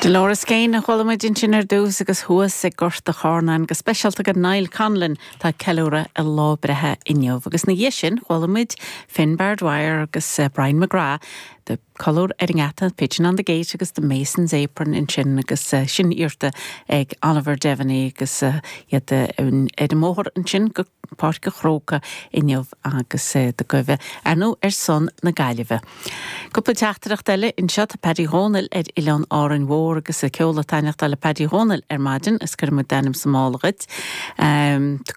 Dolores Keane a chuala muid ansin ar dtús agus thuas ag Gort a' Charnáin go speisialta go Niall Conlon atá ag ceiliúradh a lá breithe inniu. Agus ina dhiaidh sin chuala muid Finbarr Dwyer agus Brian McGrath le Colúr ar an nGeata, Pigeon on the Gate agus The Mason's Apron ansin agus sin iarrta ag Oliver Devaney agus iad ar an mbóthar ansin go Páirc an Chrócaigh inniu agus ag guibhe ar ndóigh ar son na Gaillimhe. Cúpla teachtaireacht eile anseo. Tá Paddy Dhomhnaill ar Oileán Árainn Mhór agus an ceol ag taithneachtáil le Paddy Dhomhnaill ar maidin is cuirfidh muid d'ainm sa mála dhuit.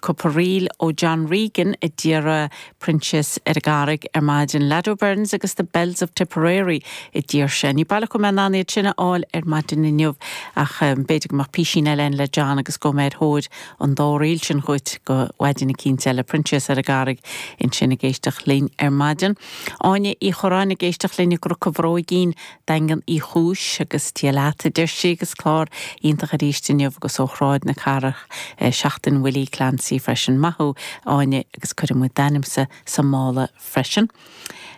Cúpla ríl ó John Regan a d'iarr Proinsias ar an gCarraig ar maidin. Lad O'Beirnes agus The Belles of Tipperary a d'iarr sé. Ní baileach go mbeidh mé in ann iad sin a fháil ar maidin inniu ach b'fhéidir go mbeadh písín eile ann le John agus gabhfaidh mé ar thóir an dá ríl sin dhuit go mhaidin eicínt eile. Proinsias ar an gCarraig ansin ag éisteacht linn ar maidin. Áine Uí Churráin ag éisteacht linn i gCnoc an Bhróigín, Daingean Uí Chúis agus Dia leat a deir sí agus clár iontach aríst inniu agus ó Shráid na Cathrach, Seachtain Willie Clancy freisin. Maith thú Áine agus cuirfidh muid d'ainmse sa mála freisin.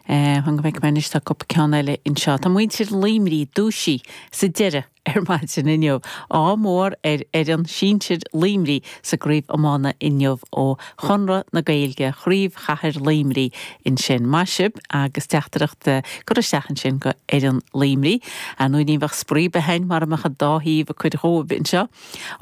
Fan go bhfeicfidh mé anois tá cúpla ceann eile anseo. Tá muintir Luimní dúisithe sa deireadh. ar maidin inniu. Ádh mór ar fhoireann sinsir Luimní sa gCraobh Iomána inniu ó Chonradh na Gaeilge, Craobh Chathair Luimní ansin. Maith sibh agus teachtaireacht curtha isteach ansin go fhoireann Luimní. Ar ndóigh ní bheadh spraoi ar bith ann mara mbeadh an dá thaobh ag cur dhóibh anseo.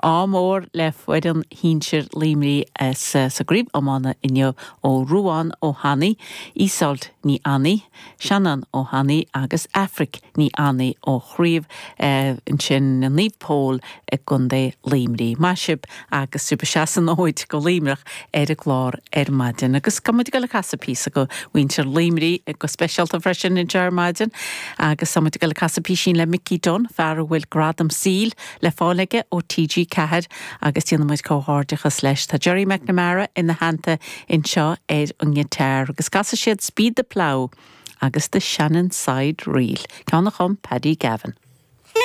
Ádh mór le foireann shinsir Luimní sa gCraobh Iomána inniu ó Ruán Ó hAnnaidh, Ísolt Ní Annaidh, Seanán Ó hAnnaidh agus Aifric Ní Annaidh ó Chraobh ansin Naomh Pól i gContae Luimní. Maith sibh agus sibh ag seasamh an fhóid go Luimneach ar an gclár ar maidin. Agus tá muid ag dul ag casadh píosa go mhuintir Luimní go speisialta freisin anseo ar maidin agus tá muid ag dul ag casadh písín le Mickey Dunne, fear a bhfuil Gradam Saoil, le fáil aige ó TG4 agus déanaimid comhghairdeachas leis. Tá Gerry McNamara ina theannta anseo ar an ngiotár agus casfaidh siad 'Speed the Plough' agus 'The Shannon Side Reel', ceann a chum Paddy Gavin.